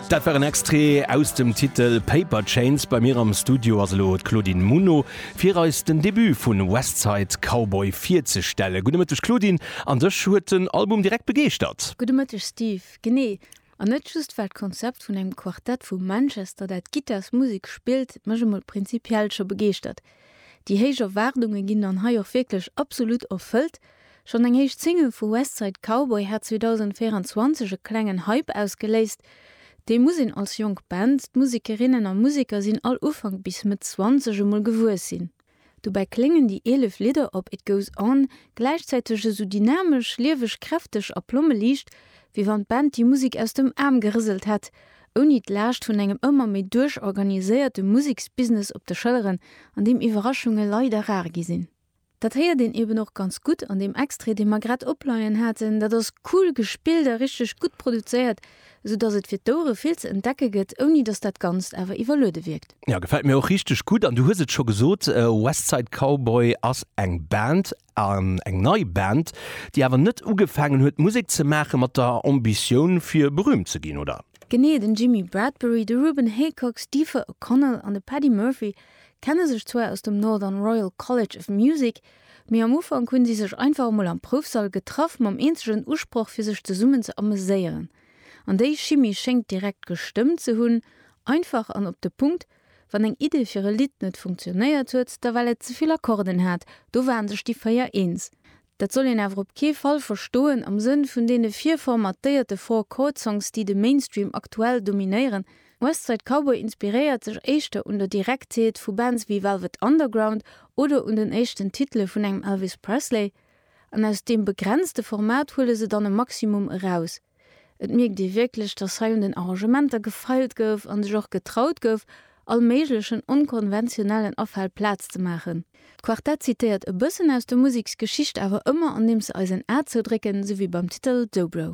Dat war en Extrait aus dem Titel Paper Chains. Bei mir am Studio ass elo d'Claudine Muno, fir eis den Debut vu West Side Cowboy virzestellen. Gudde Mëtteg Claudine, an dech huet den Album direkt begeeschtert? Gudde Mëtteg Steve, genee. An net just well d'Konzept vun engem Quartett vu Manchester, dat Gittarsmusek spillt, mech emol prinzipiell scho begeeschtert. Déi héich Erwaardunge ginn dann hei och wierklech absolut erfëllt. Schonn eng éischt Single vu West Side Cowboy hat 2024 e klengen Hype ausgeléist. Dee muss een als jonk Band, d'Musekerinnen a Museker sinn all Ufank bis Mëtt Zwanzeg, emol gewuess sinn. Dobäi kléngen déi 11 Lidder op It Goes On gläichzäiteg esou dynamesch, lieweg, kräfteg a plommeliicht, wéi wann d'Band déi Musek aus dem Aarm gerëselt hätt, ouni d'Laascht vun engem ëmmer méi duerchorganiséierte Museksbusiness op de Schëlleren, an deem Iwwerraschunge leider rar gi sinn. Dat héiert een eben och ganz gutt an deem Extrait, dee mer grad opleien haten. Dat ass cool gespillt a richteg gutt produzéiert, sou dass et fir d'Ouere vill ze entdecke gëtt, ouni dass dat Ganzt awer iwwerluede wierkt. Jo, gefält mir och richteg gutt. An du hues et scho gesot, West Side Cowboy ass eng Band, eng nei Band, déi awer net ugefaangen huet Musek ze maache mat der Ambitioun fir berühmt ze ginn, oder? Genee, den Jimmy Bradbury, de Ruben Haycox, d'Aoife O'Connell an de Paddy Murphy Kenne sech zwar aus dem Northern Royal College of Music, mee am Ufank hunn si sech einfach emol am Proufsall getraff mam eenzegen Usproch fir sech zesummen ze ameséieren. An déi Chimie schéngt direkt gestëmmt ze hunn, einfach an op de Punkt, wann eng Idee fir e Lidd net funktionéiert huet, da well et zevill Akkorden hat, do waren sech déi véier eens. Dat soll een awer op kee Fall verstoen am Sënn vun deene virformatéierte Four-Chord-Songs, déi de Mainstream aktuell dominéieren. West Side Cowboy inspiréiert sech éischter un der Direktheet vu Bands wéi Velvet Underground oder un den éischten Titele vun engem Elvis Presley. An aus deem begrenzte Format huele se dann e Maximum eraus. Et mierkt ee wierklech, dass hei un den Arrangementer gefeilt gouf a sech och getraut gouf, all méiglechen onkonventionellen Afäll Plaz ze maachen. D'Quartett zitéiert e bëssen aus der Museksgeschicht, awer ëmmer andeems se eis en A zoudrécken, sou wéi beim Titel Dobro.